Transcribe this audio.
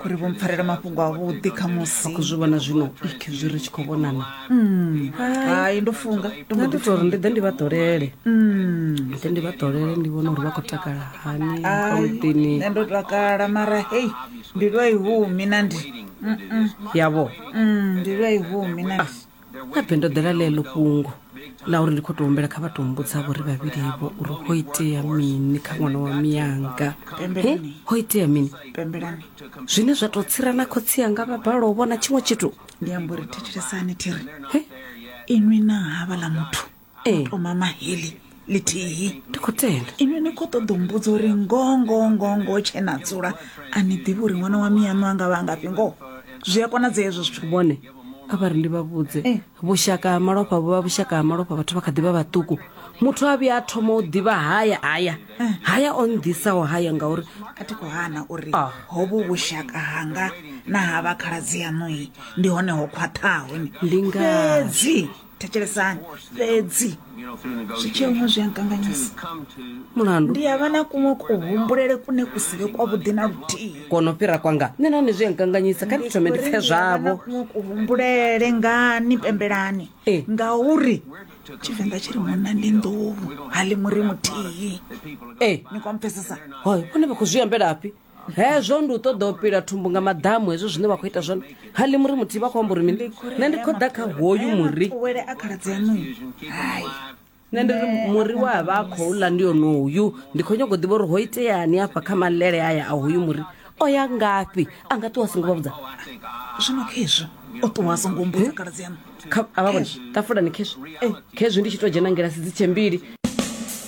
khori vho mpfarela mafhungo avhuḓi kha musi zwi vhona zwino ik zwi ri tshi khou vhonana hmm. hai ndo funga nda ndi tori ndi ḓe ndi vha ḓolele hmm. ḓe ndi vha ḓolele ndi vhona uri vha khou takala hani kamuḓini nṋe ndo takala mara hei ndi lwa ihumi na ndi yavho hmm, ndi lwa ihumi na ndi ah. habe ndo ḓela ḽeḽo fhungo ḽa uri ndi khou tou humbela kha vha tou mbudzavho ri vhavhilivo uri ho itea mini kha ṅwana wa miyanga he ho itea mini zwine zwa tou tsira na khotsi yanga vha balou vhona tshiṅwe tshithu ndi amba uri thetshelesani thiri inwi na havha ḽa muthu ee to mama heḽi ḽithihi ndi khou tenda inwi ni khou ṱoḓa u mbudza uri ngongo ngongo tshe na dzula a ni ḓivhi uri ṅwana wa miyaṋu a nga vha a ngafhi ngoho zwi a konadzea hezwo zwithu vhone a vha ri ndi vha vhudze Eh. vhushaka ha malofha vhu vha vhushaka ha malofha vhathu vha kha ḓi vha vhaṱuku muthu a vhuya a thoma u ḓivha haya haya Eh. haya o nnḓisaho haya ngauri a thi khou hana uri Ah. hovhu vhushaka hanga na ha vha khaladzi yaṋui ndi hone ho khwaṱhaho ni Ndi ngazwo. fhedzi thetshelesani fhedzi zwitshee huṅwe zwi a nkanganyisa mulandu ndi ya vha na kuṅwe kuhumbulele kune ku si vhe kwavhuḓi na luthihi kono fhira kwanga nṋe nahone zwi a nkanganyisa kha ndi thome ndi pfe zwavho kuṅwe kuhumbulele ngani pembelani Eh. ngauri tshivenḓa tshi ri munna ndi nḓuhu ha ḽi muri muthihi ee ni kwampfesesa hoyo vhone vha khou zwi ambelafhi hezwo ndi u ṱoḓa u pila thumbu nga maḓamu hezwo zwine vha khou ita zwone ha ḽi muri muthihi vha khou amba uri mini nṋe ndi khou ḓa kha hoyu muri wele a khaladzi anuyo hai nṋe ndi ri muri we a vha a khou ḽa ndi onoyu ndi khou nyago u ḓivha uri ho iteani afha kha malele aya a hoyu muri o ya ngafhi a nga ṱuwa a songo vha vhudza zwino khezwo o ṱuwa a songo mbudza khaladzi anu kha a vha vhone tafulani khezwi khezwi ndi tshi tou dzhena ngilasi dzi tshe mbili